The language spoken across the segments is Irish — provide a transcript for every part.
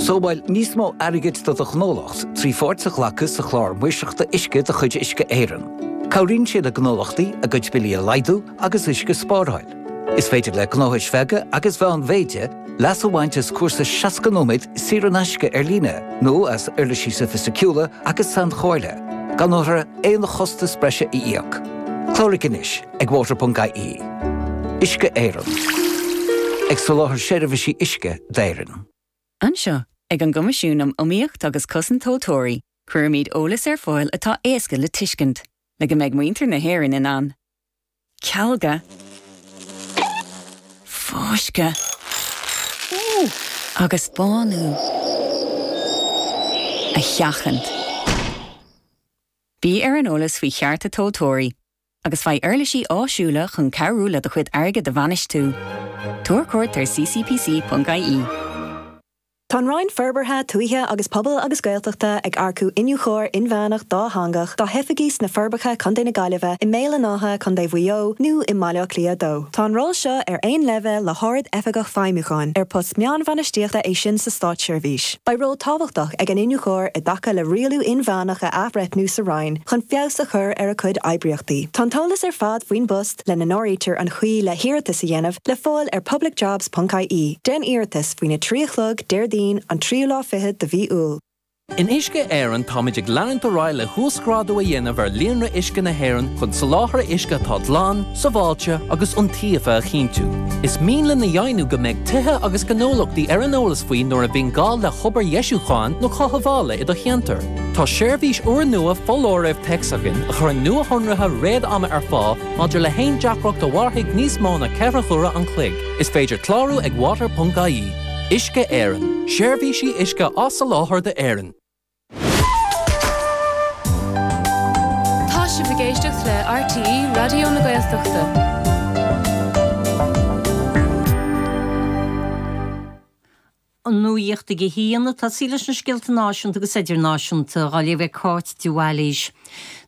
Sábháil níos mó airgid do do ghnólacht trí pháirt a ghlacadh sa Chlár Maoirseachta Uisce de chuid Uisce Éireann. Cabhraíonn sé le gnólachtaí a gcuid billí a laghdú agus uisce a spáráil. Is féidir le gnóthais bheaga agus mheánmhéide leas a bhaint as cúrsa 60 nóiméad saor in aisce ar líne nó as uirlisí soifisticiúla agus sainchomhairle, gan orthu aon chostas breise a íoc. Cláraigh anois! Ag water.ie, Uisce Éireann, ag soláthar seirbhísí uisce d'Éirinn. Anseo, ag an gCoimisiún um Iomaíocht agus Cosaint Tomhaltóirí, cuirimid eolas ar fáil atá éasca le tuiscint, le go mbeidh muintir na hÉireann in ann cealga, fáisceadh agus bánú a sheachaint. Bí ar an eolas faoi chearta tomhaltóirí agus faigh uirlisí áisiúla chun cabhrú leat do chuid airgid a bhainistiú. Tabhair cuairt ar ccpc.ie. Tá an Roinn Forbartha Tuaithe agus Pobail agus Gaeltachta ag earcú Iniúchóir Inmheánach Dátheangach dá hoifigí sna Forbacha, Co. na Gaillimhe, i mBéal an Átha, Co. Mhaigh Eo, nó i mBaile Átha Cliath 2. Tá an ról seo ar aon leibhéal le hArd-Oifigeach Feidhmiúcháin, ar post meánbhainistíochta é sin sa státseirbhís. Beidh ról tábhachtach ag an Iniúchóir i dtaca le rialú inmheánach a athbhreithniú sa Roinn chun feabhas a chur ar a cuid oibríochtaí. Tá an t-eolas ar fad faoin bpost, lena n-áirítear an chaoi le hiarratas a dhéanamh, le fáil ar publicjobs.ie. Déan iarratas faoina 3 a chlog Déardaoin, an tríú lá fichead de mhí Iúil. In Uisce Éireann táimid ag leanúint ar aghaidh le huasghrádú a dhéanamh ar líonra uisce na hÉireann chun soláthar uisce atá glan, sábháilte agus iontaofa a chinntiú. Is mian linn a dheimhniú go mbeidh tithe agus gnólachtaí ar an eolas faoi nuair a bhíonn gá le hobair dheisiúcháin nó chothabhála i do cheantar. Tá seirbhís úrnua foláirimh téacs againn a chuireann nuashonruithe réad-ama ar fáil maidir le haon deacracht a mhairfidh níos mó ná ceithre huaire an chloig. Is féidir clárú ag water.ie. Uisce Éireann, Seirbhísí uisce á soláthar d'Éirinn. Tá sibh ag éisteacht le RTÉ Raidió na Gaeltachta. An nuacht ag a haon. Tosóidh sé leis na scéalta náisiúnta agus idirnáisiúnta á léamh ag Cáit de Bhailís.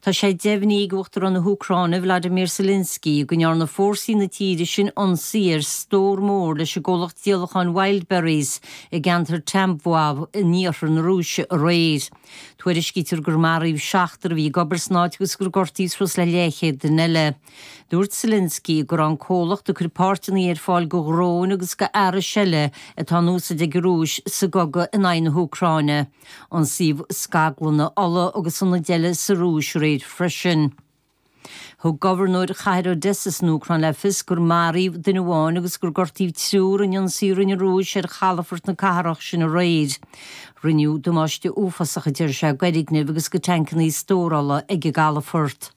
Tá sé deimhnithe ag Uachtarán na hÚcráine Vladimir Zelenskiy go ndearna fórsaí na tíre sin ionsaí ar stór mór leis an gcomhlacht díolacháin Wildberries i gceantar Tambov in iarthar na Rúise aréir. Tuairiscítear gur maraíodh seachtar a bhí ag obair san áit agus gur gortaíodh suas le leathchéad duine eile. Dúirt Zelenskiy go raibh an comhlacht ag cur páirteanna ar fáil do dhróin agus d'fhearais eile atá in úsaid ag an Rúis sa gcogadh in aghaidh na hÚcráine. ionsaíodh scaglanna ola agus ionaid eile sa Rúis aréir freisin. Thug gobharnóir chathair Odessa san Úcráin le fios gur maraíodh duine amháin agus gur gortaíodh triúr in ionsaí a rinne an Rúis ar chalafort na cathrach sin aréir. Rinneadh damáiste uafásach a deir sé d'fhoirgnimh agus do thainceanna stórála ag an gcalafort.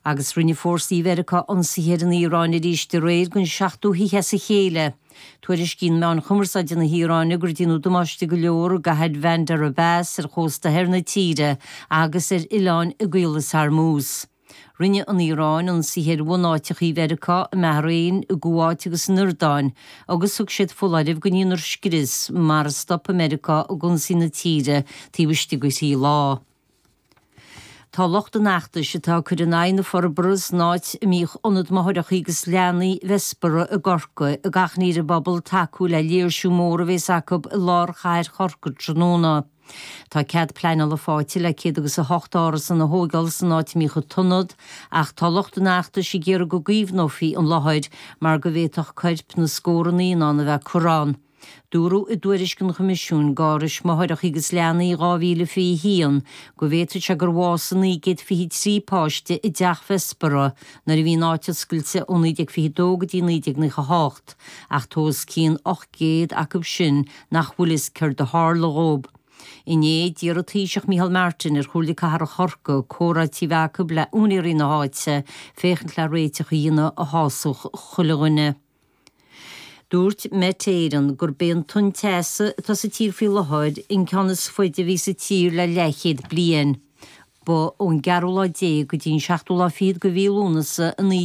Agus rinne fórsaí Mheiriceá ionsaithe ar an Iaráin arís aréir don seachtú hoíche as a chéile. Tuairiscíonn meáin chumarsáide na hIaráine gur déanadh damáiste go leor i gCathair Bhandar Abbas ar chósta thoir na tíre agus ar oileáin i gCaolas Hormuz. Rinne an Iaráin ionsaithe ar bhunáiteachaí Mheiriceá i mBahrain, i gCuáit agus san Iordáin agus thug siad foláireamh go ndéanfar scrios mara stopfaidh Meiriceá ag ionsaí na tíre taobh istigh de thrí lá. Tá lucht an fheachtais atá ag cur in aghaidh na forbara san áit a mbíodh Ionad Máithreachaí agus Leanaí, Bessborough, i gCorcaigh ag achainí ar an bpobal tacú le léirsiú mór a bhéas acu i lár chathair Chorcaigh tráthnóna. Tá cead pleaineála fáighte le céad agus a hocht n- árasán a thóigeáil san áit a mbíodh an t-ionad ach tá lucht an fheachtais ag iarraidh go gcaomhnófaí an láthair mar go bhféadfadh coirp na scórtha naíonán a bheith curtha ann. Dúradh i dtuairisc an Choimisiúin faoi Árais Máithreacha agus Leanaí 2021 go bhféadfadh sé gur bhásaigh 923 páiste i dteach Bhessborough nuair a bhí an áit oscailte ó 1922 go dtí 1998 ach tá os cionn 800 acu sin nach bhfuil fhios céard a tharla dhóib. Inné, d'iarr an Taoiseach Micheál Martin ar Chomhairle Cathrach Chorcaí comhráití a bheith acu le úinéirí na háite féachaint le réiteach a dhéanamh a shásódh chuile dhuine. Dúirt Met Éireann gurb é an tonn teasa atá sa tír faoi láthair an ceann is faide a bhí sa tír le leathchéad bliain. Ba ón gceathrú lá déag go dtí an seachtú lá fichead de mhí Lúnasa 19